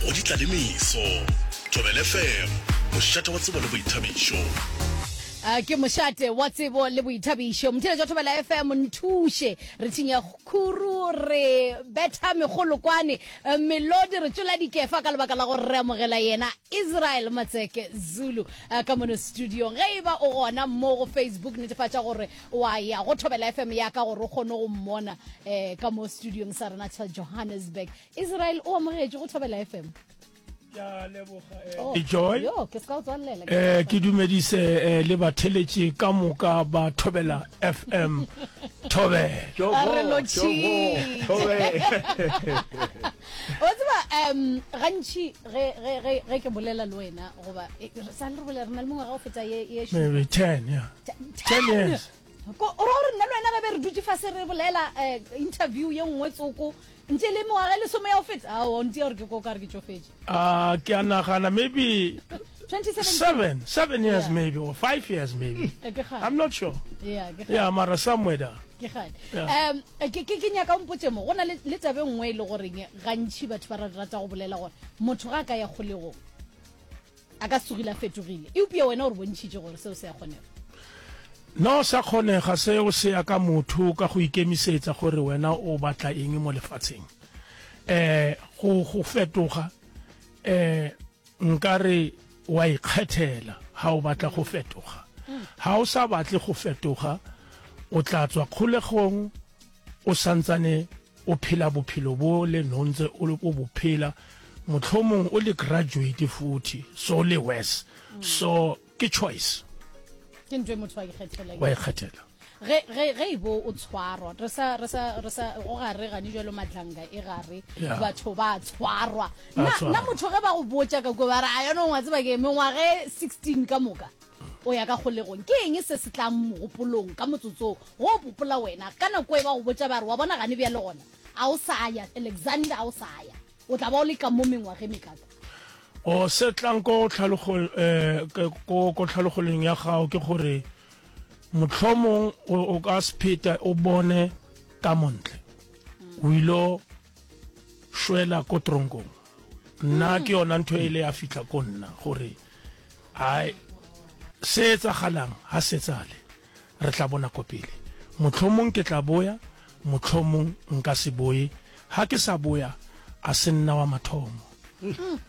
go ditlalemeso tobele fm mošate wa tsebo le boithabišo Uh, ke mošate wa tsebo le boithabišo motheletši wa thobela fm nthuše re thinya khuru re betha megolo kwane uh, melodi re tšola dikefa ka lebaka la go remogela yena israel matseke zulu uh, ka mono studiong ge e ba o gona mo go facebook netefatša gore wa ya go thobela fm ya ka gore o kgone go mmona um ka mo studiong sa rena sa johannesburg israel o amogetše go thobela fm eh. oh, joy eh, ke dumedise eh, le batheletše ka moka ba thobela fm thobe o tseba um gantšhi ge ke bolela le wena goba e, sa le re bolela re na le mongwe ga o feta ye ten ten years ko o ra gore nna le wena ge be re dutse fa se re bolela eh, interview ye nngwe tsoko ntse le mengwaga e lesome ya go feta ao ntse ya gore ke ko ka re ke tsofetse Ah, ke a nagana maybe 2017 seven seven years Yeah. maybe or five years maybe Eh, ke kgale. i'm not sure Yeah, ke kgale. yeah mara somewhere there ke gane Yeah. um ke ke- ke nyaka o mpotse mo go na le le tabe nngwe e le goreng gantšhi batho ba ra- rata go bolela gore motho ga a ka ya kgolegong a ka tsogile a fetogile eupša wena o re bontšhitše gore seo se a kgonega no sa kgonega seo se ya ka motho ka go ikemisetsa gore wena o batla eng mo lefatsheng eh go go fetoga eh nkare wa ikgethela ha o batla go fetoga ha o sa batle go fetoga o tla tswa kgolegong o sa ntsane o phela bophelo bo le nontse o le ko bophela motlhomong o le graduate futhi so le worse so ke choice ke ntwe motho wa ikgethela wa ikgethela ge ge ge ibo o tshwarwa re sa re sa re sa o gare gane jalo matlanga e gare batho ba tshwarwa na motho ge ba go botša ka ko ba re a yone ngwa tseba ke mengwage 16 ka moka O ya ka kgolegong, ke eng se se tlang mogopolong ka motsotso wo o popola wena ka nako e ba go botša ba re, Wa bona gane bjale gona? A o sa ya, Alexander, a o sa ya. O tla ba o le ka mo mengwageng mekaka. O, se tlang ko tlhalogoleng ya gago ke gore mohlomong o ka se pheta o bone ka montle. O ilo šwela ko tronkong. Nna ke yona ntho e ile ya fihla ko nna gore. Ai, se etsagalang ga se tsale, re tla bona ko pele. Mohlomong ke tla boya, mohlomong nka se boye. Ga ke sa boya, a se nna wa mathomo.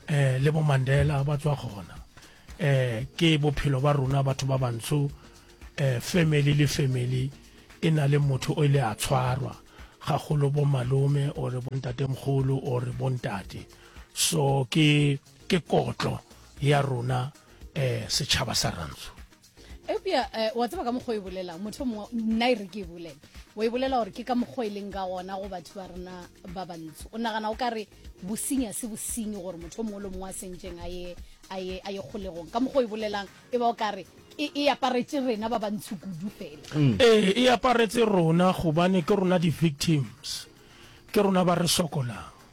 Eh, le bo Mandela ba tswa gona. Eh, ke bophelo ba rona batho ba bantsho. Eh, family le family e na le motho o ile a tshwarwa, gagolo bo malome or bo ntatemogolo or bo ntate. So ke. Ke kotlo ya rona eh, setšhaba sa rantsho eupša eh, wa tseba ka mokgwa e bolelang motho mongwe nna e re ke e bolela wa e bolela gore ke ka mokgwa e leng ka gona go batho ba rena ba bantsho o nagana o ka re bosinya se bosinyi gore motho mongwe le mongwe a sentseng a ye a ye a ye kgolegong ka mokgwa e bolelang e ba o ka re e e aparetse rena ba bantsho kudu fela mm. ee e aparetse rona gobane ke rona di-victims ke rona ba re sokolang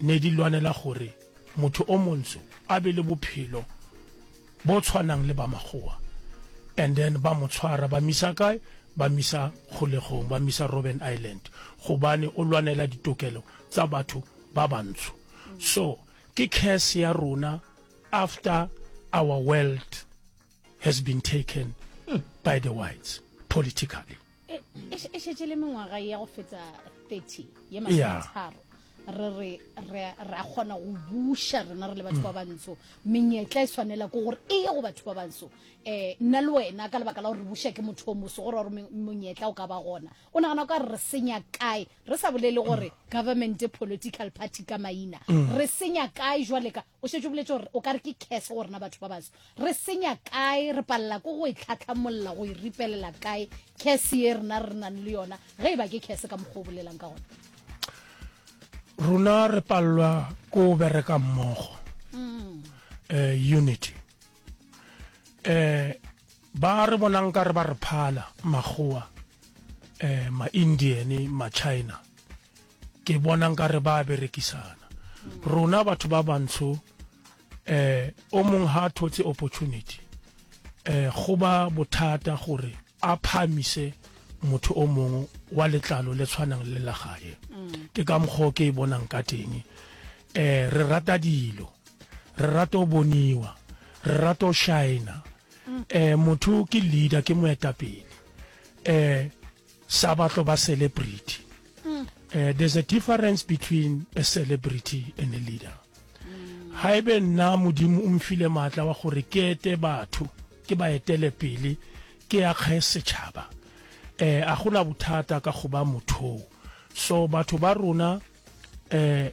Ne di lwanela gore motho o montsho a be le bophelo bo tshwanang le ba makgowa and then ba mo tshwara ba misa kae ba misa kgolegong ba misa Robben Island gobane o lwanela ditokelo tsa batho ba bantsho so ke curse ya rona after our world has been taken by the whites politically. e, e, e šetše le mengwaga ya go feta 30 ye masometharo re re re ra kgona go buša rena re le batho ba mm. bantsho menyetla e swanela ko gore e ye go batho ba bantsho um nna le wena ka lebaka la gore re buša ke motho o moso gore gore monyetla o ka ba gona o nagana ka re re senya kae re sa bolele gore mm. government political party ka maina mm. re senya kae jwale ka O šetše o boletše gore o ka re ke curse go rena batho ba baso. Re senya kae, re palela ko go e tlhatlhamolla, go e ripelela kae curse ye rena re nang le yona ge e ba ke curse ka mokgwa o bolelang ka gona. Rona re palelwa ko o bereka mmogo. Mm. Eh, unity. Eh, ba re bonang ka re ba re phala makgowa eh ma-indian ma-china Ke bona nkare ba a berekisana. Rona batho ba bantsho eh o mong ha thotse opportunity eh go ba bothata gore a phamise motho o mongwe wa letlalo le tshwanang le la gae. Ke ka mokgwa ke e bonang ka teng. Eh re rata dilo, re rata o boniwa, re rata o shine-a. Eh motho ke leader, ke moetapele. Eh sa ba tlo ba celebrity mm. uh, there's a difference between a celebrity and a leader mm. ha ebe nna modimo o mfile maatla wa gore ke ete batho ke ba etele pele ke ya kgae setšhaba eh a gona bothata ka go ba mothong so batho ba rona eh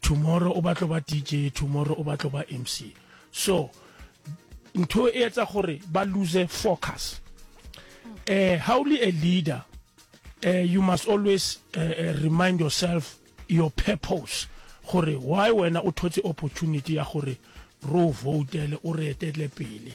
Tomorrow o batlo ba DJ, tomorrow o batlo ba MC. So ntho e etsa gore ba lose focus. Eh how le a leader, eh you must always eh, eh, remind yourself your purpose gore why wena o thotse opportunity ya gore ro votele o re etele pele.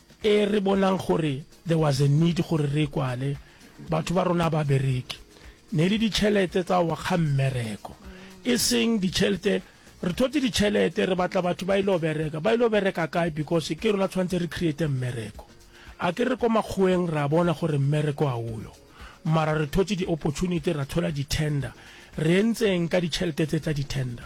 E re bonang gore there was a need gore re e kwale, batho ba rona ba bereke. Ne le ditšhelete tsa wa ga mmereko, e seng ditšhelete, re thotse ditšhelete re batla batho ba ile go bereka, ba ile go bereka kae because ke rona tshwanetse re create mmereko. A ke re ko makgoweng ra bona gore mmereko ga oyo, mara re thotse di-opportunity ra thola di-tender, re entseng ka ditšhelete tse tsa di-tender?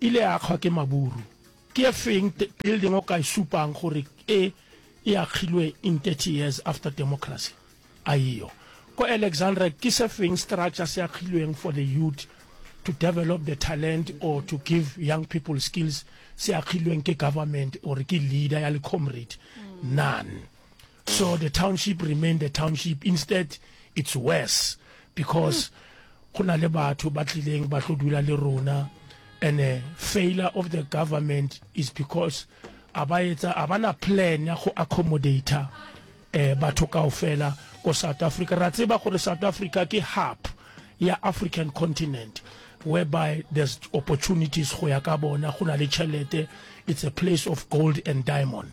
Ile akgwa ke maburu. Ke e feng building o ka e supang gore e e akgilwe in 30 years after democracy? A eyo. Ko Alexandra ke se feng structure se akgilweng for the youth to develop the talent or to give young people skills se akgilweng ke government or ke leader ya le comrade? None. So the township remain the township instead it's worse because go na le batho ba tlileng ba tlo dula le rona and uh, failure of the government is because a ba etsa a bana plan ya go accommodate eh batho kaofela ko South Africa ra tseba gore South Africa ke hub ya African continent whereby there's opportunities go ya ka bona go na le chelete it's a place of gold and diamond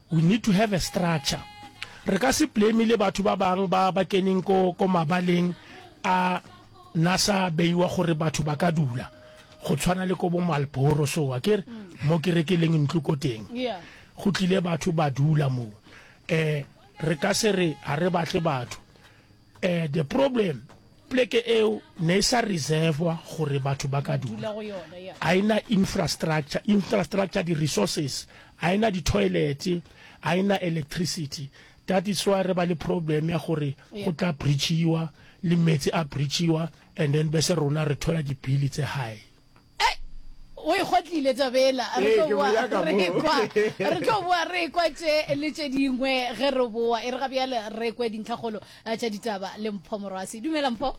We need to have a structure. Re ka se blame le batho ba bang ba ba keneng ko ko mabaleng a nasa beiwa gore batho ba ka dula go tshwana le ko bo Malboro so wa kere mm. mo ke rekeleng ntlo ko teng go tlile batho ba dula mo eh re ka se re ha re batle batho Eh, the problem, pleke eo ne e sa reservwa gore batho ba ka dula go yona ya a ena infrastructure infrastructure di resources a ena di toilet a ena electricity that is why re ba le problem ya gore go tla breachiwa le metsi a breachiwa and then bese rona re thola dibili tse high Ei, o e kgotlile tabela. Re tlo boa re kwa. Re tlo boa re kwa tše le tše dingwe ge re boa. E re ga bjale re kwe dintlhakgolo tša ditaba le Mpho Morwasi. Dumela Mpho.